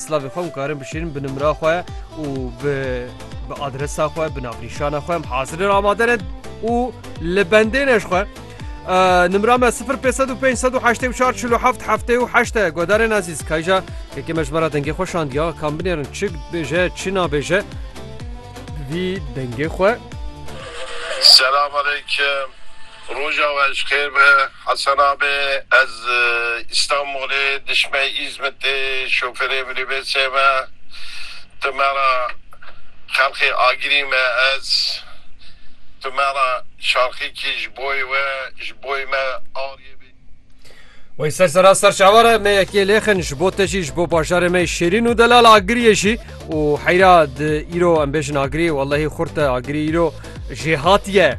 Silavê xwe em karin bişîrin bi nimra xwe û bi bi adresa xwe bi navnîşana xwe em hazirin amade ne û li bendê ne ji xwe nimra me 05058447 heftê û heşte godarên ezîz kayja yekê me ji me re dengê xwe şandiya kam binêrin çi bêje çi nabêje vî dengê xwe Selam aleyküm. Roja we ji xêr be. Hasan Abi, Ez Îstanbulê dişme Îzmitê şofêrê minîbêsê me. Tu me ra xelqê agirî me ez. Tu me ra şarxîkî ji boyê we, ji boyê me ariyê bê. Wey ser sera ser çavar e me yekê lêxin ji bo te jî ji bo bajarê me şêrîn û delal agiriyê jî û heyra di îro em bêjin agirî wellehî xurt e agirî îro jêhatiye.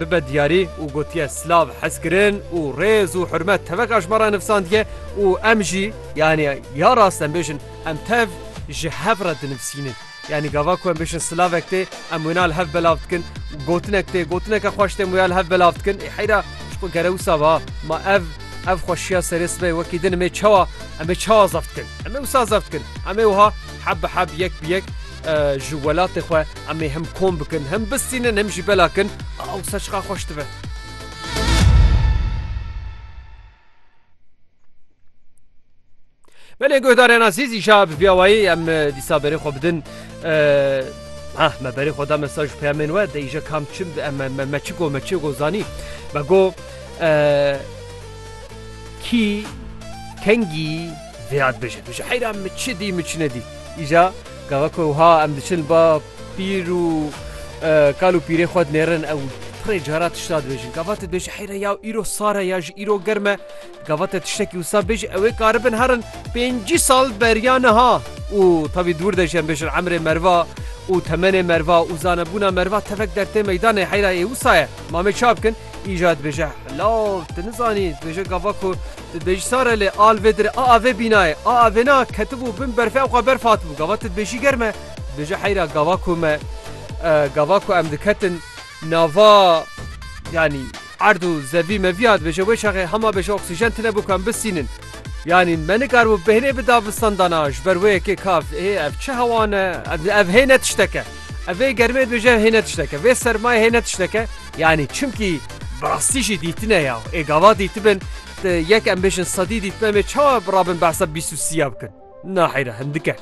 bibe diyarî û gotiye silav hezkirin û rêz û hurmet tevek ajmaran nivsandiye û em jî yanî ya rast em bêjin em tev ji hev re dinivsînin. Yanî gava ku em bêjin silavek tê em wêna li hev belav dikin û gotinek tê gotineke xweş tê em wêya li hev belav dikin ê heyra ji ku gere wisa ba ma ev ev xweşiya serê sibê wekî din em ê çawa em ê çawa zef dikin em ê wisa zef dikin em ê wiha heb bi heb yek bi yek Ji welatê xwe em ê hem kom bikin, hem bistînin, hem jî bela kin. Ew ser çiqas xweş dibe. Belê guhdarên azîz îşa bi vîya wayî em dîsa berê xwe bidin Ah, me berê xwe da mesaj û peyamên we de îje kam çim me çi go me çi go zanî me go kî kengî Vîrat bije tu ji heyra min çi dî min çi nedî. Îja gava ku wiha em diçin ba pîr û kal û pîrê xwe dinêrin ew pirê cara tişta dibêjin. Gava te dibêje heyra ya îro sare ya ji îro germe gava te tiştekî wisa bêje ewê karibin herin pêncî sal beriya niha û tevî dûr de jî em bêjin emrê merva û temenê merva û zanebûna merva tevek dertê meydanê heyra ê wisa ye. Mamê çap kin îja dibêje law tu nizanî dibêje gava ku Ti dibêjî sare lê al vê dire aa vê bînayê aa vê na ketibû bin berfê ew xwe berf hatibû gava ti dibêjî germ e dibêje heyra gava ku me gava ku em diketin nava yanî erd û zevî mevî ya dibêje wê çaxê hema bêje oksîjen tune bû ku em bisînin yanî me nikaribû bêhnê bi davistan dana ji ber wê yekê ka ê ev çi hewa ne ev hê ne tişteke ev vê germê dibêje hê ne tişteke vê sermayê hê ne tişteke Yanî çimkî bi rastî jî dîtine ya. Ê gava dîtibin yek em bêjin sedî dîtine em ê çawa rabin behsa bîst û sî ya bikin. Naheyre hindik e.